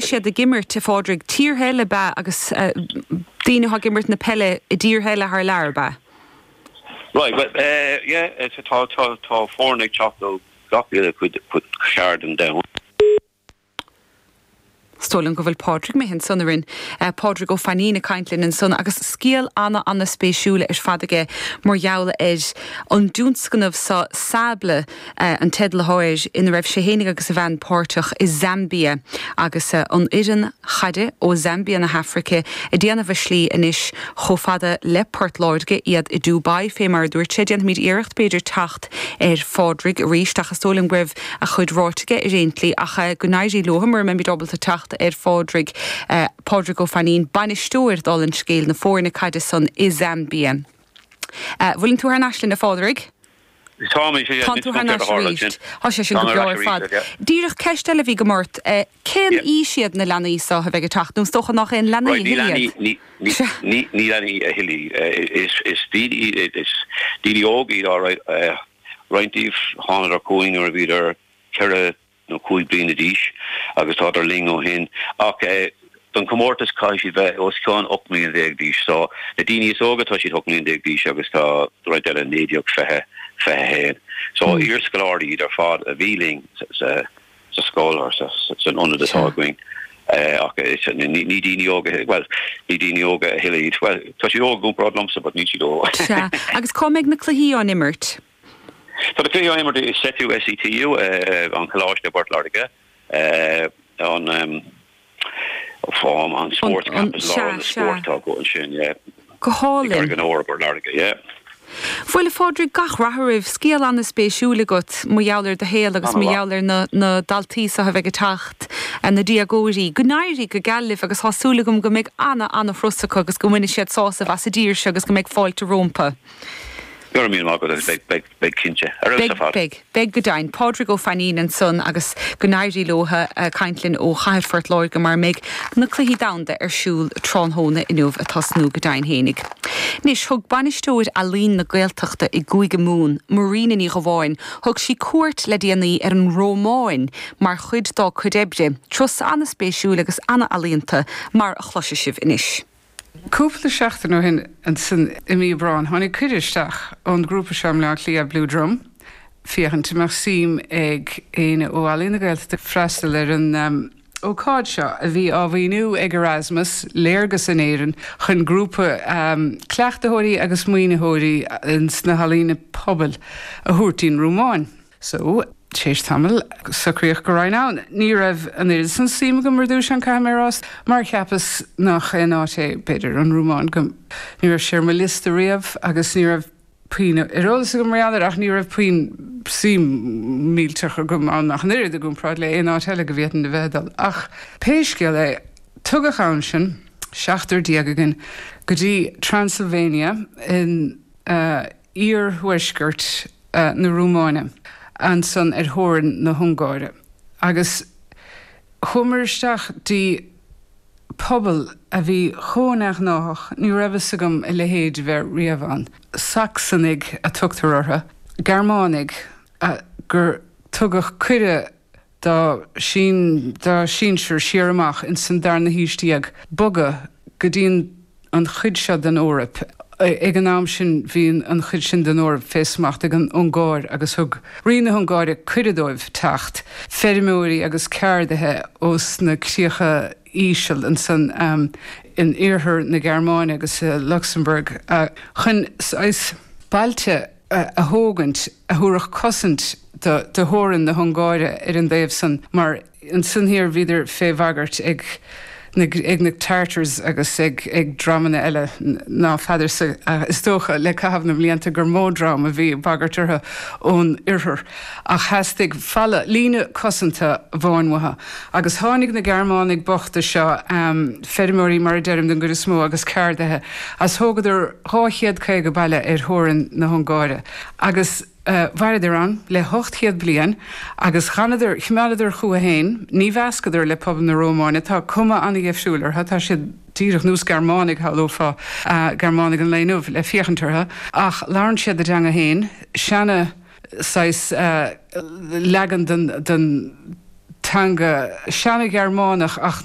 siad ag imirt, a Phádraig, tíortha eile, ab ea, agus daoine atá ag imirt na peile i dtíortha eile thar lear, ab ea? Right, well, yeah, so tá, tá, tá foirne ag teacht ó gach uile chuid, cuid, chearn den domhan. Is dóigh liom go bhfuil Pádraig imithe ansan orainn, Pádraig Ó Fainín, ag caint linn ansan agus scéal ana, ana spéisiúil ar fad aige mar gheall ar an dtionscnamh so, Sable, an teideal atá air, ina raibh sé fhéinig agus a bhean páirteach i Zambia agus an fhoireann chaide ó Zambia na hAfraice ag déanamh a slí anois chomh fada le Port Láirge, iad i Dubai, fé mar a dúirt sé. Déanfaimid iarracht, b'fhéidir, teacht ar Phádraig arís ach is dóigh liom go raibh a chuid ráite aige ar aon tslí ach go n-éirí leo mura mbeimid ábalta teacht ar Phádraig. Pádraig Ó Fainín, Bainisteoir, dála an scéil, na foirne caide san i Zambia. Bhfuileann tú thar n-ais linn, a Phádraig? Tánn tú thar n-ais arís. Tá sé sin go breá ar fad. Díreach ceist eile a bhí agam ort, cén aois iad na leanaí seo a bheidh ag teacht, nó is dócha nach aon leanaí a thuilleadh iad? Ní leanaí a thuilleadh. Is daoine óga iad, alright. Roinnt díobh, thánadar chugainn nuair a bhíodar ceithre nó cúig bliana d'aois, agus tádar linn ó shin, ach don chomórtas caithfidh siad bheith os cionn 18 mbliana d'aois. So, na daoine is óga tá siad 18 mbliana d'aois agus tá roinnt eile 19, 20, 21. So, iarscoláirí iad ar fad a bhí linn sa scoil or san ionad atá againn, ach ní daoine óga, bhuel, ní daoine óga a thuilleadh iad. Bhuel, tá siad óg i gcomparáid liomsa, but níl siad óg. Sea, agus cá mbeidh na cluichí á n-imirt? Tá na cluichí á imirt i SETU, SETU an Coláiste i bPort Láirge, an Sports Campus, lár na spóirt atá acu ansin, i gCarraig an Óir i bPort Láirge. Bhuel, a Phádraig, gach rath oraibh. Scéal an-spéisiúil agat mar gheall ar do shaol agus mar gheall ar na daltaí seo a bheidh ag teacht, na déagóirí. Go n-éirí go geal libh agus tá súil agam go mbeidh ana, ana-thuras acu agus go mbainfidh siad sásamh as an dtír seo agus go mbeidh fáilte rómpu. Go raibh míle maith agat agus beidh beidh cinnte. Ar fheabhas ar fad. Beidh, beidh, beidh go deimhin. Pádraig Ó Fainín ansan agus go n-éirí leo a' caint linn ó chathair Phort Láirge mar a mbeidh na Cluichí Domhanda ar siúl tráthnóna inniu, a' tosnú go deimhin fhéinig. Anois, thug Bainisteoir Ealaíon na Gaeltachta i gCúige Mumhan, Marina Ní Dhubháin, thug sí cuairt le déanaí ar an Rúmáin mar chuid dá cuid oibre, turas an-spéisiúil agus an-ealaíonta mar a chloisfidh sibh anois. Cúpla seachtain ó shin, ansin i mí Aibreáin, tháinig cuireadh isteach ón ghrúpa seo i mBleá Cliath, Blue Drum, féachaint an mbeadh suim ag éinne ó Ealaín na Gaeltachta freastal ar an ócáid seo a bhí á mhaoiniú ag Erasmus, Léargas in Éirinn, chun grúpa cleachtaitheoirí agus maoinitheoirí sna healaíona pobail a thabhairt dtí'n Rúmáin. So, tar éis tamaill, socraíodh go raghainn ann. Ní raibh an oiread san suim agam ar dtús ann, caithfidh mé a rá, mar cheapas nach aon áit é, b'fhéidir, an Rúmáin. Ní raibh sé ar mo liosta riamh agus ní raibh puinn ar eolas agam mar gheall air, ach ní raibh puinn suim millteach agam ann ach an oiread, i gcomparáid le haon áit eile go bhféadfainn a bheith ag dul. Ach pé scéal é, tugadh ann sinn, seachtar déag againn, go dtí Transylvania in. iarthuaisceart na Rúmáine, ansan ar theorainn na hUngáire, agus chuamar isteach dtí pobal a bhí chomh neamhghnáthach, ní raibh fhios agam a leithéid a bheith riamh ann. Sacsanaigh a tugtar orthu, Gearmánaigh gur tugadh cuireadh dá sinsir siar amach ins an darna haois déag, bogadh go dtí an chuid seo den Eoraip. Ag an am sin bhí an chuid sin den Eoraip fé smacht ag an Ungáir agus thug Rí na hUngáire cuireadh dóibh teacht, feirmeoirí agus ceardaithe ós na críocha íseal ansan in iarthar na Gearmáine agus i Luxembourg, chun saghas bailte a thógaint a thabharfadh cosaint do theorainn na hUngáire ar an dtaobh san, mar ansan thoir bhíodar fé bhagairt ag na Tartars agus ag dreamanna eile ná feadarsa. Is dócha, le caitheamh na mblianta, gur mó dream a bhí ag bagairt orthu ón oirthear, ach theastaigh falla, líne cosanta, bhuan uathu, agus tháinig na Gearmánaigh bochta seo, feirmeoirí, mar a deirim, den gcuid is mó, agus ceardaithe, agus thógadar dhá chéad caoga baile ar theorainn na hUngáire, agus mhaireadar ann le hocht chéad bliain, agus d'fhanadar, chimeádadar chucu féin, ní mheascadar le pobal na Rómáine, tá cuma ana-dheifriúil orthu, tá siad díreach, nós Gearmánaigh, shamhlófá, Gearmánaigh an lae inniu le féachaint orthu, ach labhrann siad a dteanga féin, seana saghas leagan den teanga seana-Ghearmánach, ach.